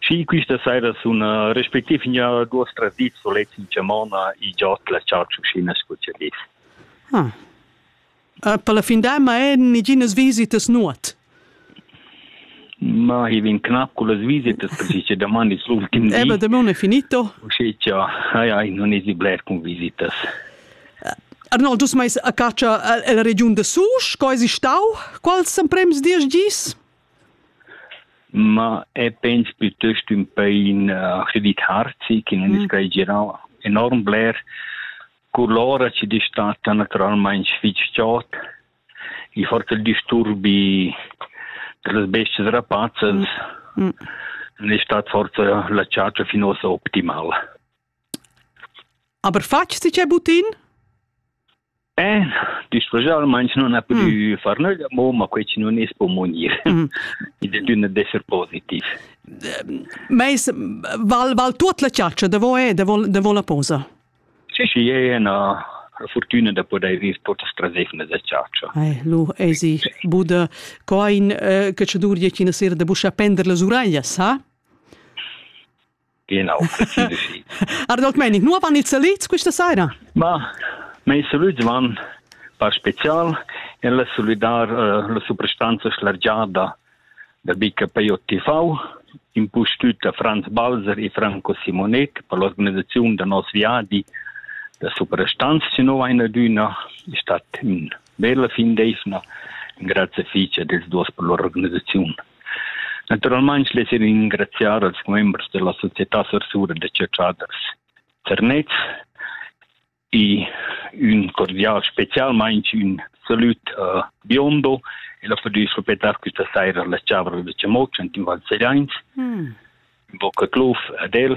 Schi quista saira suna respectiv gnà duos tradids sulets in chamona e giò't la chartschuschina scu cha dis. Ah. Per la fin d'an ma hajan niginas visitas nuot. Ma i vegn cnap cullas visitas perche cha daman es l'ultim di. Eh beh, daman è finito. Usché cha haja non esi bler cun visitas. Arnold, dus mais a catscha la regiun da Susch, co esi stau? Quals emprems diesch gis? Ma e pens piuttost ün pain aschi dit harzi chi nun es quai girà enorm bler. Cur l'ora chi dis statta natüralmaing fich chod. I forsa il disturbi da las bestias rapazzas. Ün es stat forsa la chatscha fin uossa optimal. Aber fatg si che butin? Eh, discregialmente non ha più mm. far nulla, ma quei ci non es po munir. Mm. I de dünna d'esser positiv. Meis val val tuot la chargia de vo e de vo de vo la posa. Sì, sì, è una fortuna da poter ir totas trasefne da chargia. Eh, lu ei si bude coin eh, che ci dur je cina sera de buscia pender le suraglia, sa? Genau, präzise sì. Arnold Meinig, nu van ils salüds questa saira? Ma, meis salüds van par special en la salüdar uh, la suprastanza schlargiada da BKP TV, impustüt da Franz Balser e Franco Simonet per l'organizzaziun da nos viadi da suprastanza, se no vaina d'üna, è stat ün Be la fin d'eivna engrazia fich ad els duos per lur organisaziun. Naturalmaing less io ringraziar als commembers da la Società Sarsura da Chadraders Zernez e ün cordial, specialmaing ün salut a Biondo e la Ferdüs proprietà quista saira la Chavra da Chamoc ant in Val Sereins. Mm. In bocca cluf ad el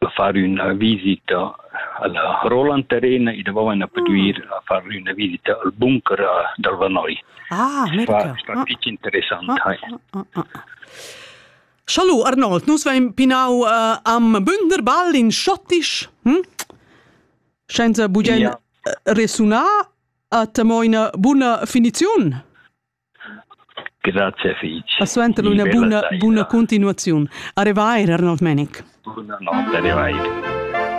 da far üna visita alla Roland Arena e davo vaina pudüir a far üna visita al bunker dal Vanoi. Ah, America. Sta ah. fich interessant ah, hai. Ah, ah, ah. Schalu Arnold, nus vein pinau uh, am Bünderball in Schottisch, hm? senza bugen ja. resunar a temoina buna finiziun. Grazie fich. E suenter üna buna, buna continuaziun. Arrivai, Arnold Menic. Arrivai.